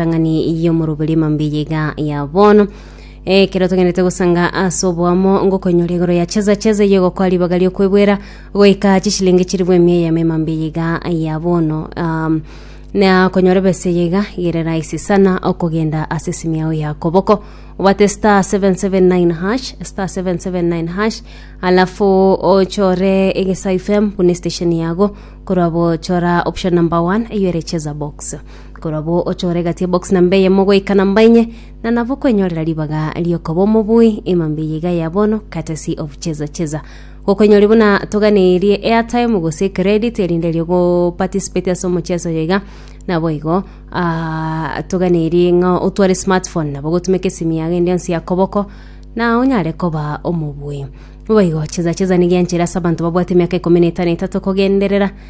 entang'ani y'omoroberi emambiya iga ya bono ekero togenderete gosanga ase oboamo ngokonyora igoro ya cheza cheza eye gokwa ribaga riokwebwera goika chishilingi chiri bwa emia eyemo emambiya iga ya bono um, na konyora ebesa eye iga gere rahisi sana okogenda ase esimu yao ya koboko obate star 779 hash star 779 hash alafu ochore egesa fm buna station yago korwa bochora option number 1 eyo ere cheza box Korabwo ochore egati ya box namba eyemo goika namba enye, na nabo kwenyorera ribaga riokoba omobui emambe eye iga ya bono, courtesy of Cheza Cheza. Gokwenyori buna toganerie airtime gose credit erinde erio go participate ase omocheso oyo iga, nabo igo ah, toganerie ng'a otware smartphone nabo gotumeka esimi yago ende yonsi ya koboko na onyare koba omobui. Boigo Cheza Cheza nigo enchera ase abanto babwate emiaka ikomi na etano etato kogenderera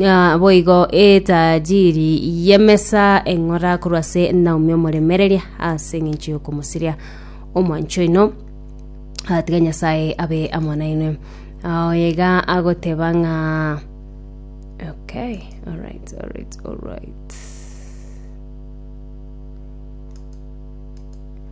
Ah, boigo etajiri y'emesa eng'ora korwa ase Naomi omoremereria ase eng'encho y'okomosiria omwancho oino Ah, tiga nyasaye abe amo nainwe Ah, oyega agoteba ng'a okay alright alright alright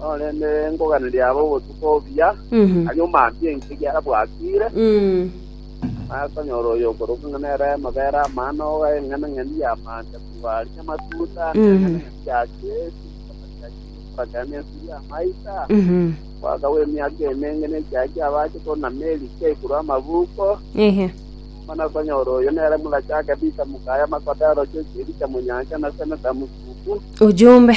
Korende nkoganeria abe obotuko obuya, aria omaambie ense egiara bwakiire, bakonyora oyokorokwa ng'a nere amabere amano, ogae eng'enang'eni y'amaanda korwa aria amatuta, na eng'enang'eni ya gesi, okorokera nensu y'amaita, omwaka bw'emiaka emenge ne ekiagio abache konama erike igoro amabuko, bono okonyora oyo nere morache akebisa mokaye amakoda arocheretie erike monyancha, na seneta mosuku. Ujumbe.